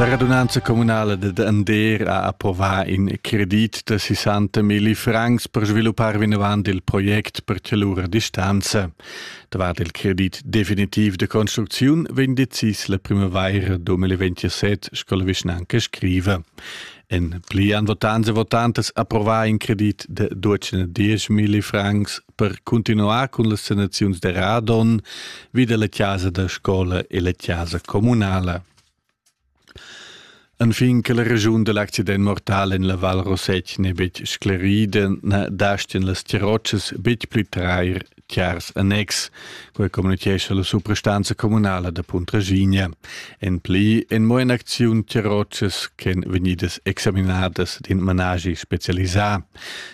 La radunanza communala dad Ander ha approvà in credit da 60 milli francs per sviluppar vinavant il project per lura distanza. Davart il credit definitiv de construcziun vegn decis la primavaira 2027, sco la vischnanca scriva. En pli han votanze e votantes approvà in credit de 210 milli francs per cuntinuar cun las sanaziuns da Radon vi dalla casa da scola e la casa communala. Anfin che la regiun dell'accident mortal en la Val Rossetg n'è betg sclerida, na dastien las tirotschas betg pli trair tiars annex, quai communitgescha la suprastanza communala da Puntraginia. En pli en mo en acziun tirotschas ch'en vegnidas examinadas d'in managi specialisà.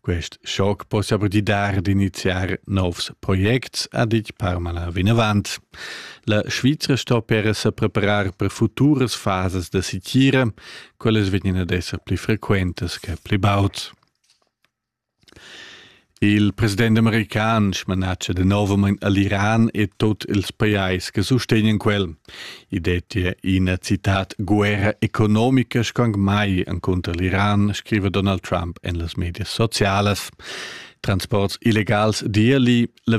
Quest schoc possa pudi dar d'iniziar novs projects, ha ditg Parmala vinavant. La Svizra sto per se preparar per futuras fases da sitira, quelles vegnan ad esser pli frequentas che pli baud. Il president american smanatga de novament all'Iran e tot ils pajais che sustegnan quel – I dettia ina citad guerra economica scang mai encunter l'Iran, scriva Donald Trump en las medias socialas. Transports illegals d'Irli, la